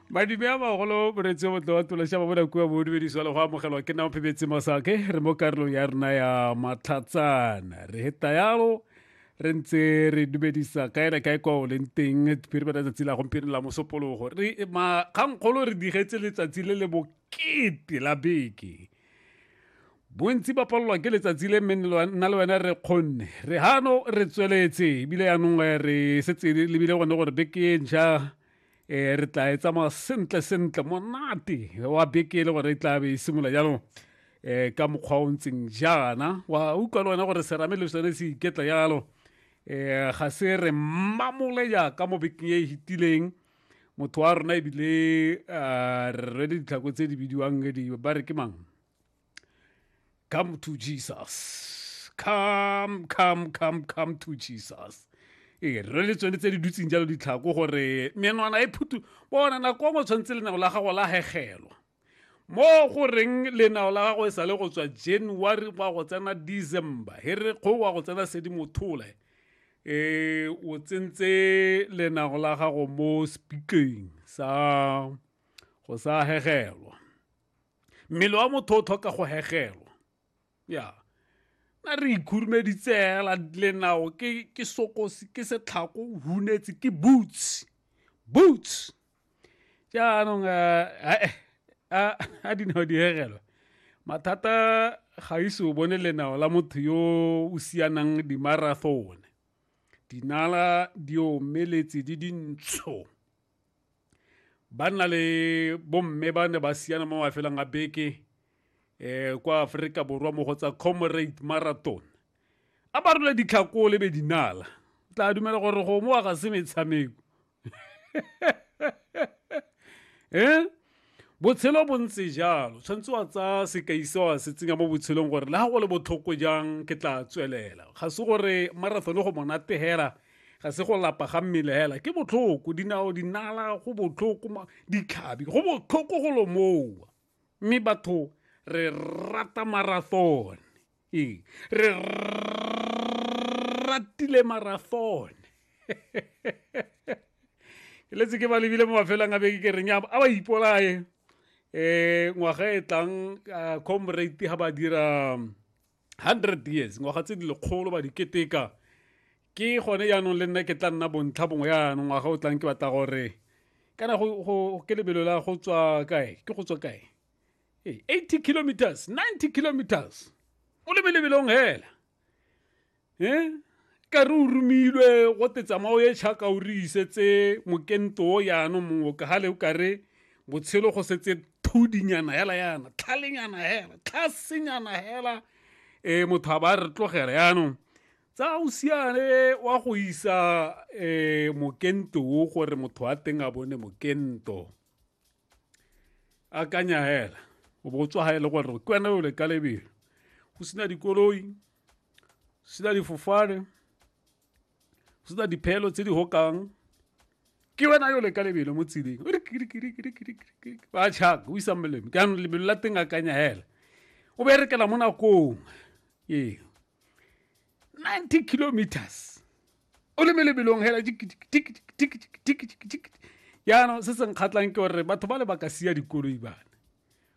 madime a magolo moretsi motlo wa tološa ba bona kua bodumediso le go amogelwa ke nna phebetse masake re mo karolong ya rena ya matlhatsana re heta yalo re ntse re dumedisa kae na kae kwa o leng teng phiri bana tsatsi la gompieno la mosopologo re makgangkgolo re digetse letsatsi le le bokete la beke bontsi ba palelwa ke letsatsi le mme nna le wena re kgonne re gano re tsweletse ebile yanong eh, re setse lebile gone gore beke e ntšha um eh, re tla e tsamaya sentle sentle monate wa beke e le gore e tla be e simolola jalo um ka mokgwa o ntseng jaana wa utlwa le wena gore serame le sone se iketla jalo um ga se re mmamole jaaka mo bekeng e e fetileng motho wa rona ebile um re rwele ditlhako tse di bidiwang ba re ke mang Come to Jesus. Come, come, come, come to Jesus. ee re le tsone tse di dutseng jalo ditlhako gore menwana e phutu bona nako ngwe tshwanetse lenao la gago la hegelwa mo go reng lenao la gago e sa le go tswa january wa go tsena december he re kgo wa go tsena sedimothole eh o tsentse lenao la gago mo speakeng sa go sa hegelwa mmele wa motho o tlhoka go hegelwa ya na re ikhurumeditse hela lenao ke ke sokosi ke setlhako hunetse ke boots boots jaanong eh, eh, eh, a dinao di hegelwa mathata ga ise o bone lenao la motho yo o sianang dimarathone dinala di omeletse di dintsho ba nna le bomme ba ne ba siana mo mafelong a beke eh kwa Afrika Borwa mo go tsa Comrade Marathon a ba role ditlhakole be dinala tla dumela gore go mo ga se metshameko eh Botshelo bo ntse jalo, tshwanetse wa tsaya sekai se wa se tsenya mo botshelong gore le ga go le botlhoko jang ke tla tswelela. Ga se gore marathon go monate hela, ga se go lapa ga mmele hela, ke botlhoko, dinao dinala go botlhoko, ditlhabi go botlhoko go lomowa. Mme batho re rata marathon. eng re ratile marathon ke letse ke ba lebile mo mafelong a beke ke reng a ba ipolaye um ngwaga e tlang comrate ga ba dira hundred years ngwaga tse di lekgolo ba di keteka ke gone jaanong le nna ke tla nna bontlha bongwe jaanong ngwaga o tlang ke batla gore kana go ke lebelo la go tswa kae ke go tswa kae Hey, 80 kilometers 90 kilometers o le melebelong hela eh ka re o romilwe go te tsamao ye tšhaka o re isetse mokento o yano mongwe ka gale o ka re botshelo go setse thudinyana hela yana tlhalenyana hela tlhasenyana hela e motho a ba re tlogela yaanong tsa o siane wa go isa um mokento o gore motho wa teng a bone mokento akanya hela o bo tswa ga e le gore ke wena o le ka lebelo go sena dikoloi go sena difofane go sena dipheelo tse di gokang ke wena yo le ka lebelo mo tseleng ba chaka o isang melemo ka lebelo la teng akanya hela o berekela mo nakong ee 90 kilometers o le melebelong hela jaanong se se nkgatlhang ke gore batho ba le ba ka sia dikoloi bana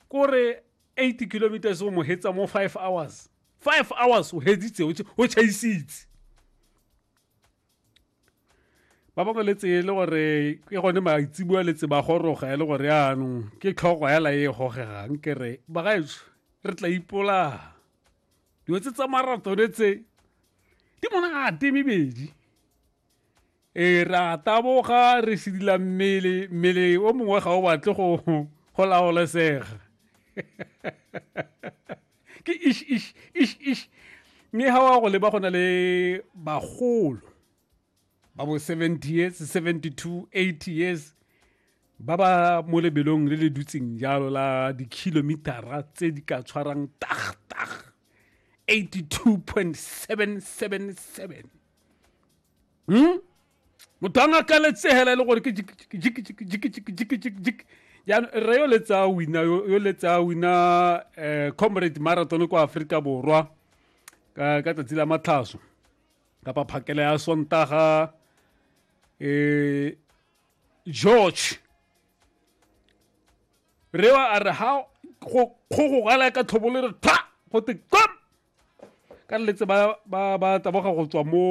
kore 80 kilometers o mo hetsa mo 5 hours 5 hours o hetsitse o chaisitse ba bangwe le tseye le gore ke gone maitsibua le tse ba goroga e le gore yaanong ke tlhogo hela e gogegang ke re bagaetso re tla ipolaa dilo tse tsa maratone tse di monate mebedi e ra taboga re sedila mmele mmele o mongwe ga o batle go go laolesega ke ish ish ish ish mme ga wa go leba go na le bagolo ba bo 70 years 72 80 years ba ba mo lebelong le le dutseng jalo la dikhilomitara tse di ka tshwarang tag tag 82.777 hmm? motho a ngaka letsegela e le gore ke jikijikijikijikijikijik jaanong re yo letsa wina yo letsa wina um comrade marathon kwa aforika borwa ka tsatsi la matlhaso kapa phakela ya sontaga eh George re wa a re ha go go go gala ka tlhobole re tha go te kom ka letse ba ba ba taboga go tswa mo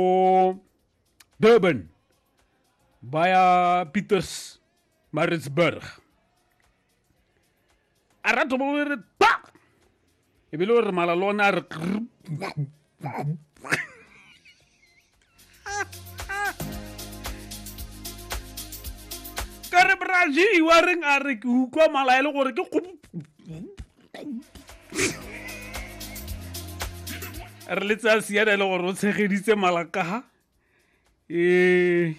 Durban ba ya Pieters Maritzburg a ratho bo re pa e be le gore mala le one a re ka re braji wa reng a re ke utlwa mala e le gore ke re le tsaya siana e le gore o tshegeditse malakaga ee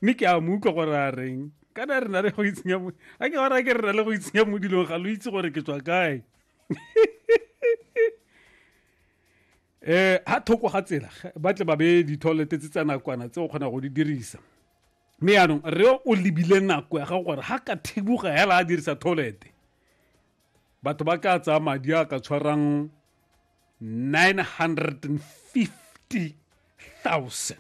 mme ke a mo utlwa gore a reng kana re na le go itsenya mo a ke gore ke re na le go itsenya mo dilong ga lo itse gore ke tswa kae eh ha thoko ga tsela ba tle ba be di-toilet tse tsa nakwana tse o kgona go di dirisa mme yaanong re o lebile nako ya gago gore ga ka thibuga hela a dirisa toilet batho ba ka tsaya madi a ka tshwarang 950,000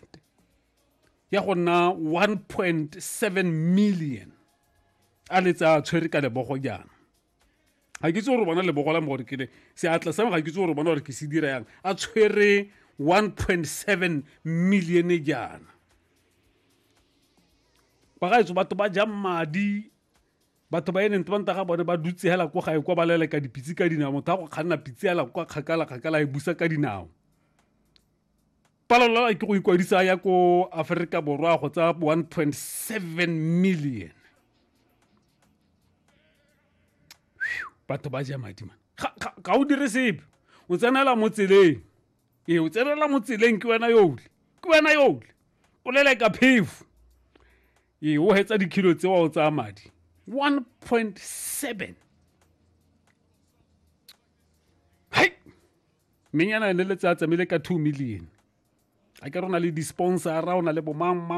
ya go nna 1.7 million a le tsa tshwere ka lebogo jaana ga ke itse gore bona lebogo la mo gore kele seatla sa ga ke itse gore bona gore ke se dira yang a tshwere 1.7 million jaana ba gaetso batho ba jang madi batho ba e leng tebanta ga bone ba dutse hela ko gae kwa ba leleka dipitse ka dinao motho a go kganna pitse hela kwa kgakala kgakala e busa ka dinao palelelwa ke go ikwadisa ya ko aforika borwa go tsa 1.7 million batho ba ja madi man ga o dire sepe o tsenela mo tseleng ee o tsenela mo tseleng ke wena yoole ke wena yoole o leleka phefo ee o hetsa dikilo tse wa o tsaya madi 1.7 hai menyana ne le tsaya tsamile ka 2 million a ke rona le di-sponsora o na le bomang mang